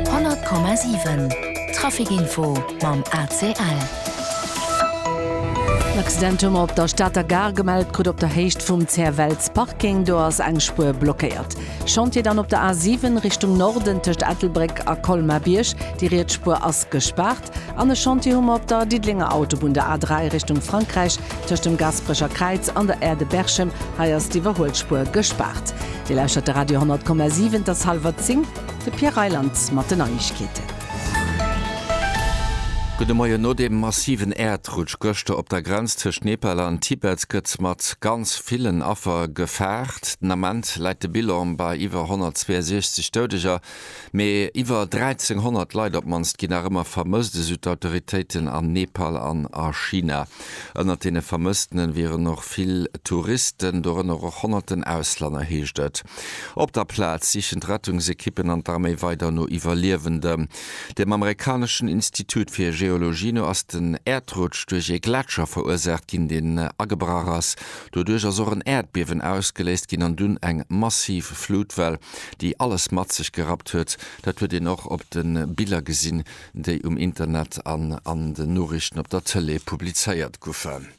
100,7 Trafic Info mam ACL. En Accident hu mer op der Stater Gare gemellt kritt, op der Héicht vum Zerwells Parking. Do ass eng Spuer blockéiert. Chantier dann op der A7 Richtung Norden tëscht Ettelbréck a Colmar-Bierg. Déi riets Spuer ass gespaart. Test. En Echantier hu mer op der Diddelenger Autobunn, der A3 Richtung Frankräich, tëscht dem Gasperecher Kräiz an der Aire de Berchem. Hei ass d'Iwwerhuelspuer gespaart. Dir lauschtert de Radio 100,7, et ass hallwer 10, de Pierre Reyland mat den Neiegkeeten. Gudde Moien. No dem massiven Äerdrutsch gëschter op der Grenz tëscht Nepal an Tibet gëtt mat ganz villen Affer gefaart. Den Ament läit de Bilan bei iwwer 162 Doudeger. Mee iwwer 1.300 Leit op d'mannst ginn nach ëmmer vermësst, esou d'Autoritéiten an Nepal an a China. Ënnert deene Vermësstene wieren och vill Touristen, dorënner och honnerten Auslänner, heescht et. Op der Plaz sichen d'Rettungsekippen an d'Arméi weider no Iwwerliewenden. Dem amerikaneschen Institut fir Geologie no ass den Äerdrutsch duerch ee Gletscher verursaacht ginn, deen agebrach ass. Doduerch ass och en Äerdbiewen ausgeléist ginn an dunn eng massiv Flutwell. déi alles mat sech gerappt huet. Dat huet een och op de Biller gesinn, déi um Internet an an den Noriichten op der Tëlee publizéiert goufen.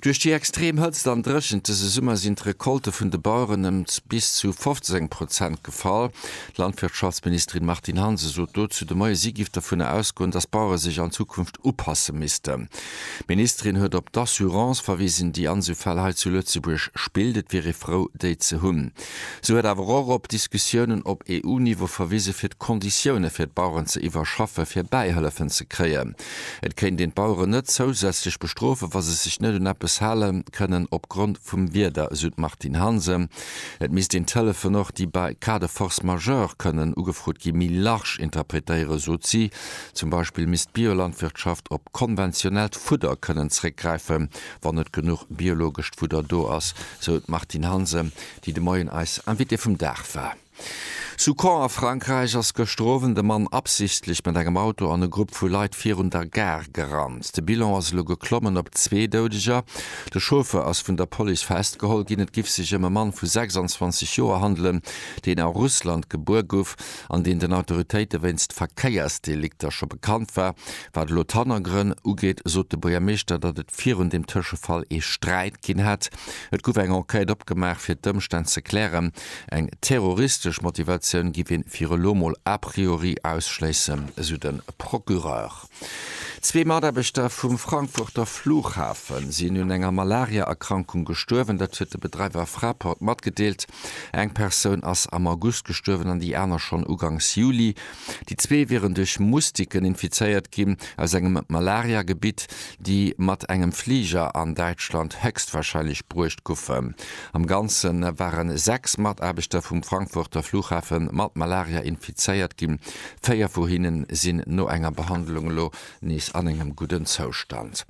Duerch déi extrem Hëtzt an Dréchent dëse Summer sinn d'Recolte vun de Baueren ëm bis zu 15 Prozent gefall. D'Landwirtschaftsministerin Martine Hansen sot dozou de Moie, si giff dovunner ausgoen, datt d'Bauere sech an Zukunft upasse missten. D'Ministerin huet op d'Assurance verwisen, déi Ansufäll hei zu Lëtzebuerg spillt. Et wier ee frou, déi ze hunn. Si huet awer och op Diskussiounen op EU-Niveau verwise fir d'Konditioune fir d'Baueren ze iwwerschaffe fir Bäihëllefen ze kréien. Et kéint een d'Baueren net zousätzlech bestrofen, wa se sech net un eppes hale kënnen op Grond vum Wieder, esou d'Martine Hansen. Et misst een d'Hëllefen och, déi bei Cas de force majeure kënnen ugefrot ginn, méi large interpretéieren, sot si. Zum Beispill misst d'Biolandwirtschaft op konventionellt Fudder kënnen zeréckgräifen. wann net genuch biologescht Fudder do ass, sou d'Martine Hansen, déi de Moien eis Invitée vum Dag war. Zu Caen a Frankräich ass gëschter Owend e Mann absichtlech mat engem Auto an e Grupp vu Leit virun der Gare gerannt. De Bilan ass elo geklommen op zwee Doudeger. De Chauffeur ass vun der Police festgeholl ginn. Et giff sech ëm e Mann vu 26 Joer handelen, deen a Russland gebuer guff. an deen den Autoritéite wéinst Verkéiersdelikter scho bekannt war. Wat elo d'Hannergrënn ugeet, sot de Buergermeeschter, datt et virun deem Tëschefall ee Sträit ginn hätt. Et gouf eng Enquête opgemaach, fir d'Ëmstänn ze klären. Eng terroristesch Motivatioun giff ee viru elo mol a priori ausschléissen, esou de Procureur. Zwee Mataarbechter vum Frankfurter Flughafe sinn un enger Malaria-Erkrankung gestuerwen. Dat huet de Bedreiwer Fraport matgedeelt. Eng Persoun ass am August gestuerwen an déi aner schonn ugangs Juli. Déi zwee wieren duerch Mustiken infizéiert ginn aus engem Malaria-Gebitt, déi mat engem Fliger an Däitschland héchstwarscheinlech bruecht goufen. Am Ganze ware 6 Mataarbechter vum Frankfurter Flughafe mat Malaria infizéiert ginn. Véier vu hinne sinn no enger Behandlung elo nees an engem gudden Zoustand.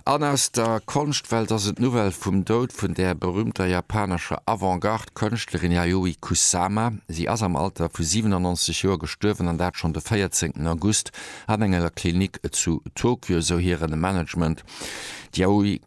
An aus der Konschtwelt ass et d'Nouvelle vum Doud vun der berüümter japanescher Avant-Garde-Kënschtlerin Yayoi Kusama. Si ass am Alter vu 97 Joer gestuerwen, an dat schonn de 14 August an enger Klinik zu Tokio, esou hire Management. D'Yayoi.